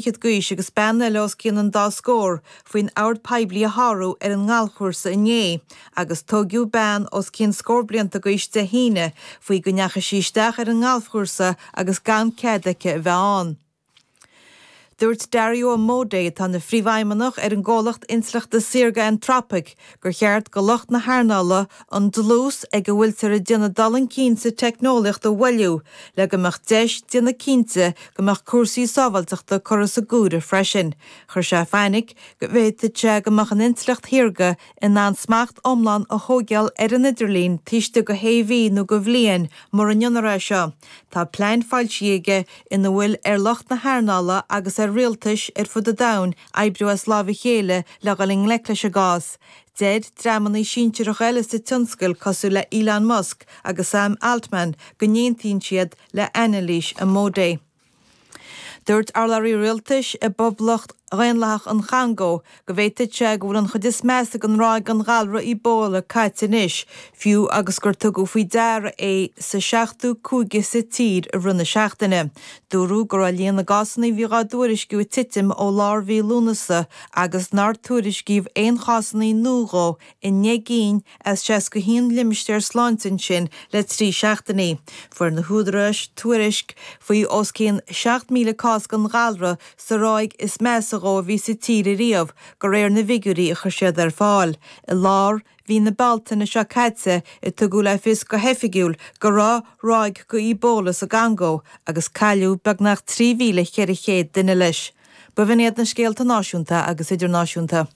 fichead d'aois agus bean eile os cionn an dá scór faoin ord poiblí a shárú ar an ngalfchúrsa inné agus tóigeadh bean os cionn scór blianta d'aois Dé hAoine faoi go ndeachaigh sí isteach ar an ngalfchúrsa agus gan cead aici a bheith ann. Dúirt Dario Amodei, atá ina phríomhfheidhmeannach ar an gcomhlacht intleachta saorga Anthropic, gur cheart do lucht na hearnála an dlús ag a bhfuiltear ag déanamh dul chun cinn sa teicneolaíocht a mhoilliú le go mbeadh deis déanamh cinnte go mbeadh cúrsaí sábháilteachta curtha sa gcuntas freisin. Chuir sé fainic go bhféadfadh sé go mbeadh an intleacht shaorga in ann smacht iomlán a thóigeáil ar an idirlíon taobh istigh de shé mhí nó de bhliain mura ndéanar é seo. Tá pleain foilsithe aige ina bhfuil ar lucht na hearnála agus ar rialtais ar fud an domhain oibriú as láimh a chéile le dhul i ngleic leis an gcás. Deir dreamannaí sinsearacha eile sa tionscal cosúil le Elon Musk agus Sam Altman go n-aontaíonn siad le hanailís Amodei. Dúirt urlabhraí rialtais i bPoblacht Dhaonlathach an Chongó go bhféadfadh sé go bhfuil an chuid is measa den ráig den ghalra Ebola caite anois, fiú agus gur tugadh faoi deara é sa seachtú cúige sa tír i rith na seachtaine. Dúradh go raibh líon na gcásanna a bhíodh á dtuairisciú ag titim ó lár mhí Lúnasa agus nár tuairiscíodh aon chásanna nua dhe i ndeich gcinn as 61 limistéar sláinte ansin le trí seachtainí. Fuair na húdaráis tuairisc faoi os cionn 7,000 cás den ghalra sa ráig is measa dhe a bhí sa tír ariamh, de réir na bhfigiúirí a chuir siad ar fáil. I lár mhí na Bealtaine seo caite a tugadh le fios go hoifigiúil go raibh ráig de Ebola sa gCongó agus cailleadh beagnach 3,400 duine leis. B'in iad na scéalta náisiúnta agus idirnáisiúnta.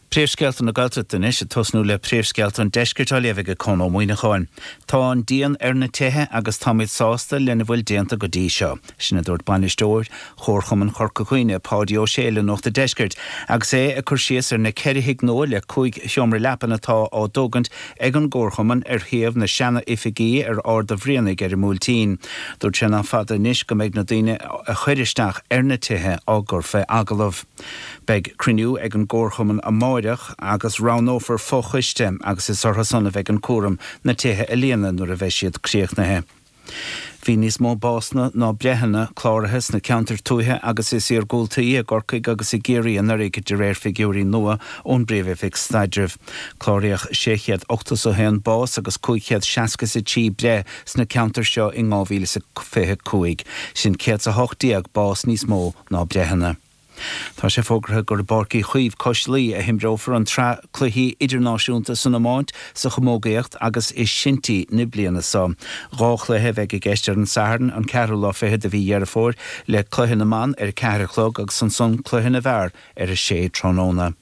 Príomhscéalta na Gaeltachta anois, ag tosnú le príomhscéalta an deiscirt á léamh ag Conn Ó Muíneacháin. Tá an díon ar na tithe agus táimid sásta lena bhfuil déanta go dtí seo. Sin a dúirt bainisteoir Chomharchumann Chorca Dhuibhne, Páidí Ó Sé le Nuacht an Deiscirt, agus é ag cur síos ar na ceithre thigh nua le cúig sheomra leapan atá á dtógaint ag an gComharchumann ar shuíomh na seana-oifige ar Ard a' Bhrianaigh ar an mBuailtín. Dúirt sé nach fada anois go mbeidh na daoine a chuir isteach ar na tithe á gcur fé agallamh. Beidh cruinniú ag an gComharchumann amáireach agus roghnófar fo-choiste agus is orthu san a bheidh an cúram na tithe a líonadh nuair a bheidh siad críochnaithe. Bhí níos mó básanna ná breitheanna cláraithe sna ceantair tuaithe is iargúltaí i gCorcaigh agus i gCiarraí anuraidh de réir figiúirí nua ón bPríomh-Oifig Staidrimh. Cláraíodh sé chéad ochtas a haon bás agus cúig chéad seasca is a trí breith sna ceantair seo in dhá mhíle is a fiche cúig, sin céad is a hocht déag bás níos mó ná breitheanna. Tá sé fógartha gur i bPáirc Uí Chaoimh cois Laoi a himreofar an tsraith cluichí idirnáisiúnta san iomáint, sa chamógaíocht agus i sinty na bliana seo. Dhá chluiche a bheidh i gceist ar an Satharn, an ceathrú lá fichead de mhí Dheireadh Fómhair, le cluiche na mban ar a ceathair a chlog agus ansan cluiche na bhfear ar a sé tráthnóna.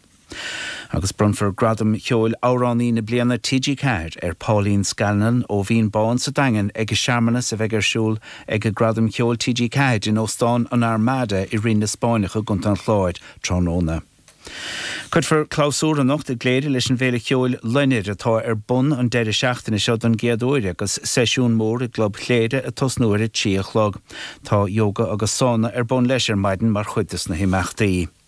Agus bronnfar Gradam Cheoil Amhránaí na Bliana TG4 ar Pauline Scanlon ó Bhinn Bán sa Daingean ag an searmanas a bheidh ar siúl ag Gradam Cheoil TG4 in Óstán an Armada i Rinn na Spáinneach i gContae an Chláir tráthnóna. Cuirfear clabhsúr anocht i gCléire leis an bhféile ceoil Loinnir atá ar bun an deireadh seachtaine seo don gcéad uair agus seisiún mór i gClub Chléire ag tosnú ar a trí a chlog. Tá Yoga agus Sána ar bun leis ar maidin mar chuid dos na himeachtaí.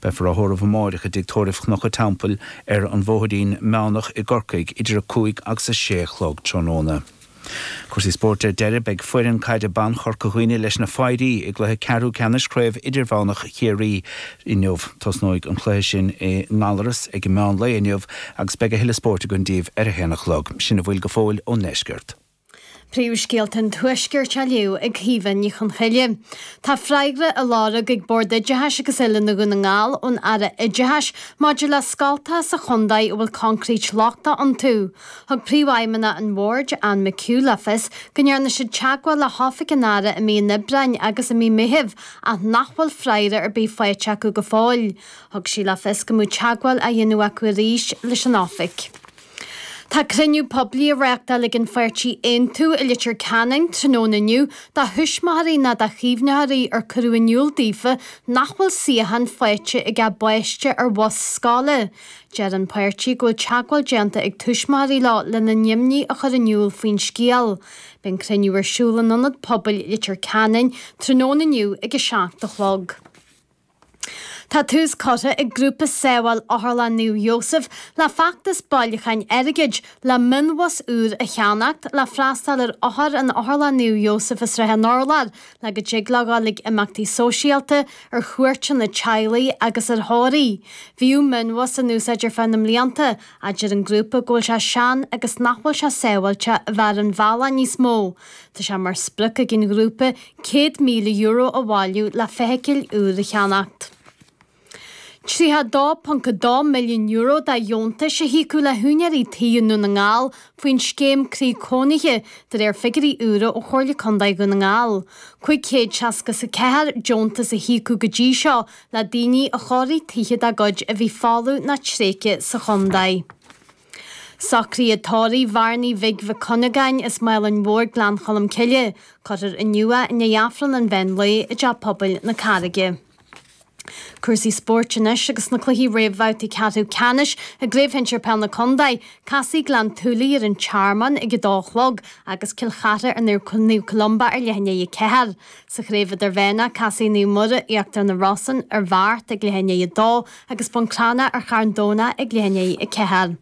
Beifear á thórramh amáireach i dTigh Tórraimh Chnoc a' Teampaill ar an Bhóithrín Meánach i gCorcaigh idir a cúig agus a sé a chlog tráthnóna. Cúrsaí Spóirt Ar deireadh beidh foireann caide bhan Chorca Dhuibhne leis na Fairí i gcluiche ceathrú ceannais Chraobh Idirmheánach Chiarraí inniu. Tosnóidh an cluiche sin i nGallarus ag meán lae inniu agus beidh a thuilleadh spóirt againn daoibh ar a haon a chlog. Sin a bhfuil go fóill ón ndeisceart. Príomhscéalta an Tuaiscirt á léamh ag Caoimhe Ní Chonchoille. Tá freagra á lorg ag Bord Oideachais agus Oiliúna Dhún na nGall ón Aire Oideachais maidir le scoltacha sa chontae a bhfuil concrete lochtach iontu. Thug Príomhfheidhmeannach an Bhoird, Anne McHugh le fios go ndearna siad teagmháil le hOifig an Aire i mí an Aibreáin agus i mí Meithimh ach nach bhfuil freagra ar bith faighte acu go fóill. Thug sí le fios go mbeadh teagmháil á dhéanamh acu arís leis an Oifig. Tá cruinniú poiblí á reáchtáil ag an pháirtí Aontú i Leitir Ceanainn tráthnóna inniu do thuismitheoirí nó do chaomhnóirí ar cuireadh in iúl daofa nach bhfuil suíochán faighte ag a bpáiste ar bhus scoile. Deir an páirtí go bhfuil teagmháil déanta ag tuismitheoirí leo lena n-imní a chur in iúl faoin scéal. Beidh an cruinniú ar siúl in Ionad Pobail Leitir Ceanainn tráthnóna inniu ag a seacht a chlog. Tá tús curtha ag Grúpa Sábháil Otharlann Naomh Iósaf le feachtas bailiúcháin airgid le mionbhus úr a cheannacht le freastáil ar othair in Otharlann Naomh Iósaf i Srath an Urláir le go dtig leo gabháil chuig imeachtaí sóisialta, ar chuairteanna teaghlaigh agus ar thórraimh. Bhíodh mionbhus in úsáid ar feadh na mblianta A deir an grúpa go bhfuil sé sean agus nach bhfuil sé sábháilte a bheith ar an bhealach níos mó. Tá sé mar sprioc ag an ghrúpa €100,000 a bhailiú le feithicil úr a cheannacht. €32.2 milliún de dheontais a híocadh le húinéirí tí i nDún na nGall faoin scéim Croí Cónaithe, de réir figiuirí úra ó Chomhairle Contae Dhún na nGall. 564 deontas a híocadh go dtí seo le daoine a chóirigh tithe dá gcuid a bhí folamh ná tréigthe sa chontae. Socruithe tórraimh Bhearnaí Bhig Mhic Cuinneagáin as Málainn Mhóir Gleann Cholm Cille, cuirfear inniu é i ndiaidh Aifreann an mheán lae i dTeach Pobail na Carraige. Cúrsaí spóirt anois agus na cluichí réamhbhabhtaí ceathrú ceannais i gCraobh Shinsir Peil na Contae, casfaidh Gleann tSúilí ar an Tearmann ag a dó a chlog agus Cill Chartha ar Naomh Columba ar leath i ndiaidh a ceathair. Sa Chraobh Idirmheánach, casfaidh Naomh Muire, Íochtar na Rosann, ar Bheart ag leath i ndiaidh a dó agus Bun Cranncha ar Charn Domhnach ag leath i ndiaidh a ceathair.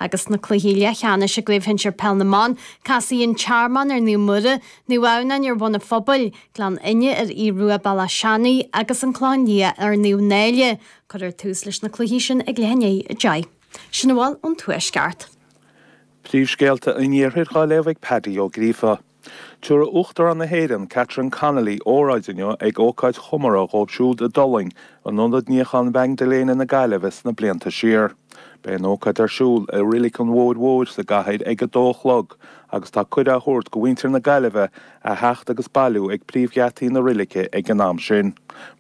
Agus sna cluichí leathcheannais i gCraobh Shinsir Peil na mBan, casfaidh An Tearmann ar Naomh Muire, Naomh Adhamhnáin ar Bhun an Phobail, Gleann Fhinne ar Aodh Rua Béal Átha Seanaidh agus An Clochán Liath ar Naomh Náille. Cuirfear tús leis na cluichí sin ag leath i ndiaidh a deich. Sin a bhfuil ón Tuaisceart. Príomhscéalta an Iarthair dhá léamh ag Paddy Ó Gríofa. Tiúrfaidh Uachtarán na hÉireann, Catherine Connolly, óráid inniu ag ócáid chomórtha dhóibh siúd a d'fhulaing in Ionad Níocháin Mhaigdiléana na Gaillimhe sna blianta siar. Beidh an ócáid ar siúl i Reilig an Bhóthair Mhóir sa gcathair ag a dó a chlog agus tá cuireadh á thabhairt go mhuintir na Gaillimhe a theacht agus bailiú ag príomhgheataí na reilige ag an am sin.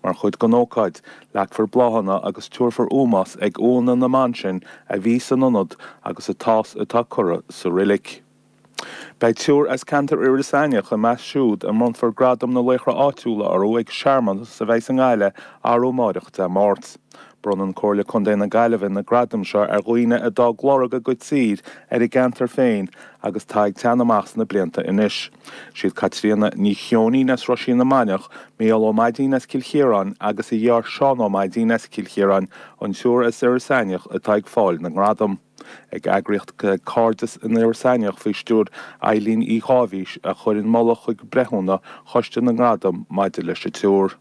Mar chuid den ócáid, leagfar bláthanna agus tiúrfar ómós ag uaigheanna na mban sin a bhí san Ionad agus atá sa atá curtha sa reilig. Beidh triúr as ceantar Iorras Aithneach i measc siúd a mbronnfar Gradam na Laochra Áitiúla orthu ag searmanas a bheidh sa nGaillimh arú amáireach, Dé Máirt. Bronnann Comhairle Contae na Gaillimhe na gradaim seo ar dhaoine a d'fhág lorg go síoraí ar a gceantar féin agus atá ag teannadh amach sna blianta anois. Siad Caitríona Ní Cheoinín as Roisín na Mainiach, Micheál Ó Maidín as Cill Chiaráin agus a dheartháir Seán Ó Maidín as Cill Chiaráin an triúr as Iorras Aithneach atá ag fáil na ngradam. An eagraíocht Cairdeas in Iorras Aithneach faoi stiúir Eileen Uí Dháibhís a chuir an moladh chuig breithiúna Choiste na nGradam maidir leis an triúr.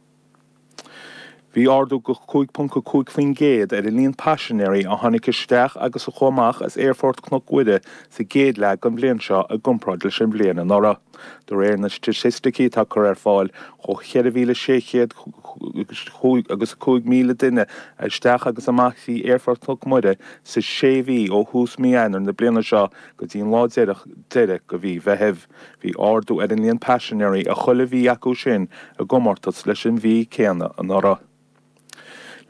Bhí ardú go cúig ponc a cúig faoin gcéad ar an líon paisinéirí a tháinig isteach agus a chuaigh amach as Aerfort Cnoc Mhuire sa gcéad leath den bhliain seo i gcomparáid leis an bhliain anuraidh. De réir na staitisticí atá curtha ar fáil, chuaigh 4,600 agus 5,000 duine isteach agus amach thrí Aerfort Chnoc Mhuire sa sé mhí ó thús mí Eanáir na bliana seo go dtí an lá deiridh de mhí Mheithimh. Bhí ardú ar an líon paisinéirí i chuile mhí acu sin i gcomórtas leis an mhí céanna anuraidh.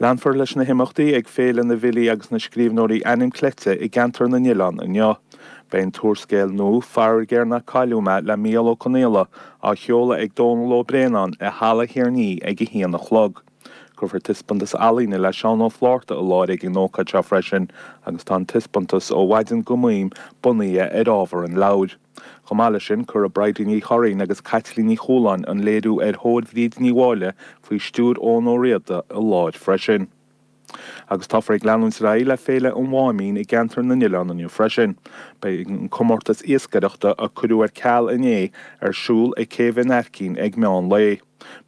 Leanfar leis na himeachtaí ag Féile na bhFilí agus na Scríbhneoirí Ainm Cleite i gceantar na nOileán inniu. Beidh an t-úrscéal nua, Faraor Géar Nár Cailleadh Mé le Mícheál Ó Conghaile á sheoladh ag Dónall Ó Braonáin i Halla Thír an Fhia ag a haon a chlog. Cuirfear taispeántas ealaíne le Seán Ó Flaithearta i láthair ag an ócáid seo freisin agus tá an taispeántas Ó Mhaidin Go Maidhm bunaithe ar ábhar an leabhair. Chomh maith leis sin, cuireadh Bridie Ní Churraoin agus Caitlín Ní Chualáin an léiriú ar thóir Bhríd Ní Mháille faoi stiúir Eoghan Ó Riada i láthair freisin. Agus táthar ag leanúint ar aghaidh le Féile an Mháimín i gCeantar na nOileán inniu freisin. Beidh an comórtas iascaireachta, a cuireadh ar ceal inné, ar siúl ag Céibh an Aircín ag meán lae.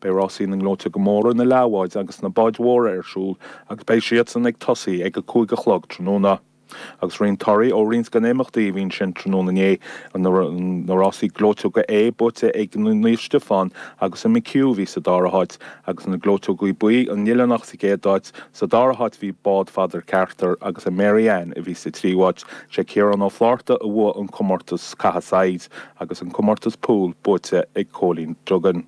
Beidh rásaí na ngleoiteoga móra, na leathbháid agus na báid mhóra ar siúl agus beidh siadsan ag tosaí ag a cúig a chlog tráthnóna. Agus roinnt torthaí ó roinnt de na himeachtaí a bhí ansin tráthnóna inné, na rásaí gleoiteoga A buaite ag Naomh Stiofán agus an McHugh a bhí sa dara háit agus na gleoiteoga B, an Oileánach sa gcéad áit, sa dara háit bhí bád Pheadar Carter agus an Mary Ann a bhí sa tríú háit. Sé Ciarán Ó Flárta a bhuaigh an comórtas caite saighead agus an comórtas Pool buaite ag Cóilín Duggan.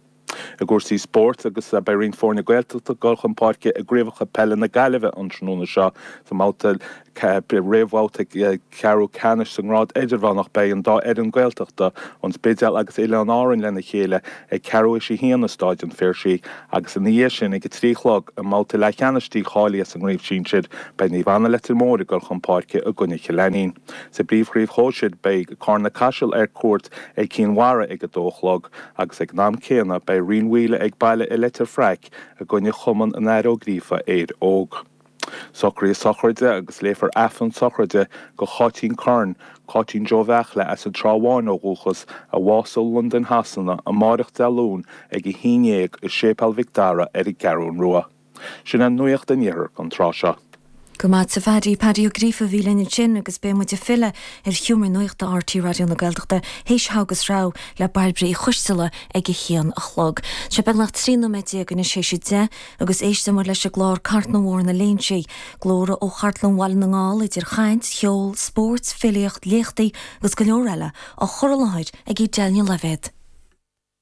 I gcúrsaí spóirt agus beidh roinnt foirne Gaeltachta ag dul chun páirce i gCraobhacha Peile na Gaillimhe an tráthnóna seo. Sa mbabhta réamhbhabhta ceathrú ceannais sa ngrád idirmheánach beidh an dá fhoireann Gaeltachta, An Spidéal agus Oileáin Árann lena chéile ag ceathrú théis a haon i Stáid an Phiarsaigh agus ina dhiaidh sin ag a trí a chlog i mbabhta leathcheannais dícháilithe sa ngrád sinsir beidh Naomh Anna Leitir Móir ag dul chun páirce i gcoinne Chill Ainnín. Sa bpríomhchraobh shóisir beidh Cárna-Caiseal ar cuairt ar Cinn Mhara ag a dó a chlog. agus ag an am céanna beidh Rinn Mhaoile ag baile i Leitir Fraic i gcoinne Chumann an Athar Ó Gríofa, Éire Óg. Socruithe sochraide agus léifear Aifreann sochraide do Cháitín Curran, Cáitín Joe Bheachla as an Trá Bháin ó dhúchas, a bhásaigh i Londain Shasana, amáireach Dé Luain ag a haon déag i Séipéal Mhic Dara ar an gCeathrún Rua. Sin é nuaíocht an Iarthair an tráth seo. Go maith a Phaddy. Paddy Ó Gríofa a bhí linn ansin agus beidh muid ag filleadh ar Sheomra Nuachta RTÉ Raidió na Gaeltachta théis Thogha agus Rogha le Bairbre Uí Choisteala ag a haon a chlog. Sé beagnach trí nóiméad déag anois théis a deich agus éistfidh muid leis an gclár Cartlann Bhóthar na Léinsí, glórtha ó Chartlann Bhaile na nGall idir chaint, cheol, spóirt, filíocht, léachtaí agus go leor eile, á chur i láthair ag Daniel Levett.